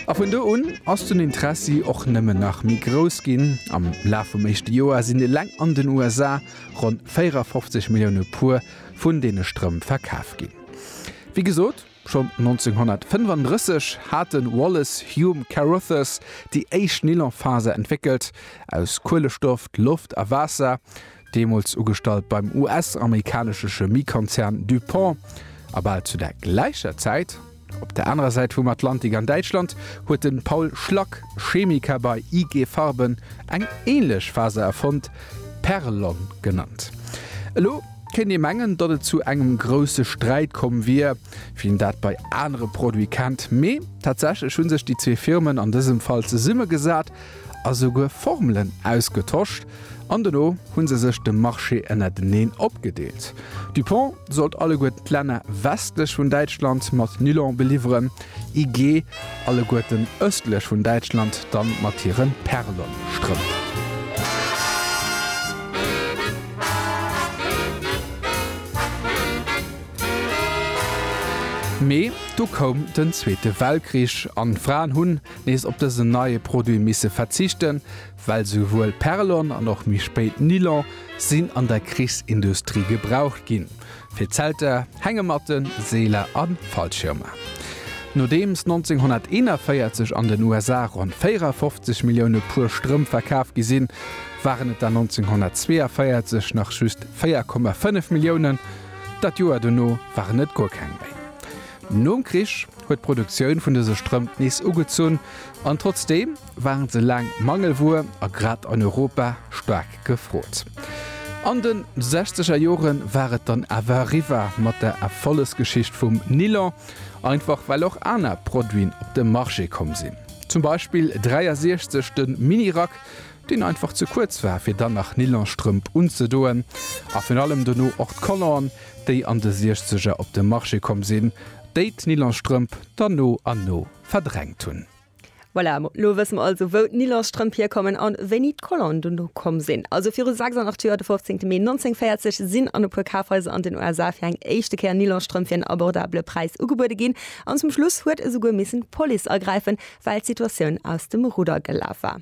A vun do un ass den Interessi och nëmmen nach méi grouss ginn. Am Laf vum éischte Joer sinn eleng an den USA ronn 54 Millioune Puer vun deene Strëmp verkaf ginn. Wéi gesot, schonn 1935 hat de Wallace Hume Carothers déi éischt Nylonfaser entwéckelt, aus Kuelestoff, Loft a Waasser. deemools ugestallt beim US-amerikanesche Chemiekonzern DuPont, a bal zu der gläicher Zäit op der anerer Säit vum Atlantik an Däitschland, huet de Paul Schlack, Chemiker bei IG Farben, eng änlech Faser erfonnt, Perlon genannt. Elo kéint ee mengen, datt et zu engem grousse Sträit komm wier, wéi een dat bei anere Produite kennt, mee tatsächlech hu sech déi zwee Firmen an dësem Fall zesummegesat, a souguer Formelen ausgetosch an dono hu se sech de Marché ënnerteneen opgedeelt. Dupont sollt alleguerten d'Länner westlech vun Däitschland mat Nylon beliwweren, IG alleguerten ëstlech vun Däitschland dann mat hire Perlon-Strëmp. Mee du koum den Zweete Weltkrich an d'Fraen hunn. nees op dësen neie Produit misse verzichten, well souwuel Perlon an och méi spéit Nylon sinn an der Krichsindustrie gebraucht ginn, fir Zelter, Hängematten, Seeler a Fallschirmer. Nodeems 1941 an den USA ronn 54 Millioune Puer Strëmp verkaf gi sinn, waren et der 1942 nach just 4,5 Milliounen, dat Joer dono waren et guer keng méi. Nom Krich huet d'Produktioun vun dëse Strëmp nees ugezunn, an trotzdeem waren se laang Mangelwuer a grad an Europa staark gefrot. An de sechzeger Jore war et dann awer eriwwer mat der Erfollegsgeschicht vum Nilon, einfach well och aner Produiten op de Marché komm sinn. Zum Beispill 63 de Mini-Rack, deen einfach ze kuerz war fir dann nach Nylonstrëmp unzedoen, a virun allem dono och d'Color'en déi an de Siechzeger op de Marché komm sinn, déi d'Nylonstrëmp dann no an no verdrängt hunn. Voilà, lo wësse mer also wou d'Nylonstrëmp hierkommen a wéini d'Color'en dono komm sinn. Also viru 86 Joer, de 15 Mee 1940, sinn an e puer Kafhaiser an den USA fir eng éischte Kéier Nylonstrëmp fir en abordabele Präis ugebuede ginn, an zum Schluss huet esouguer missen d'Police agräifen, well d'Situatioun aus dem Rudder gelaf war.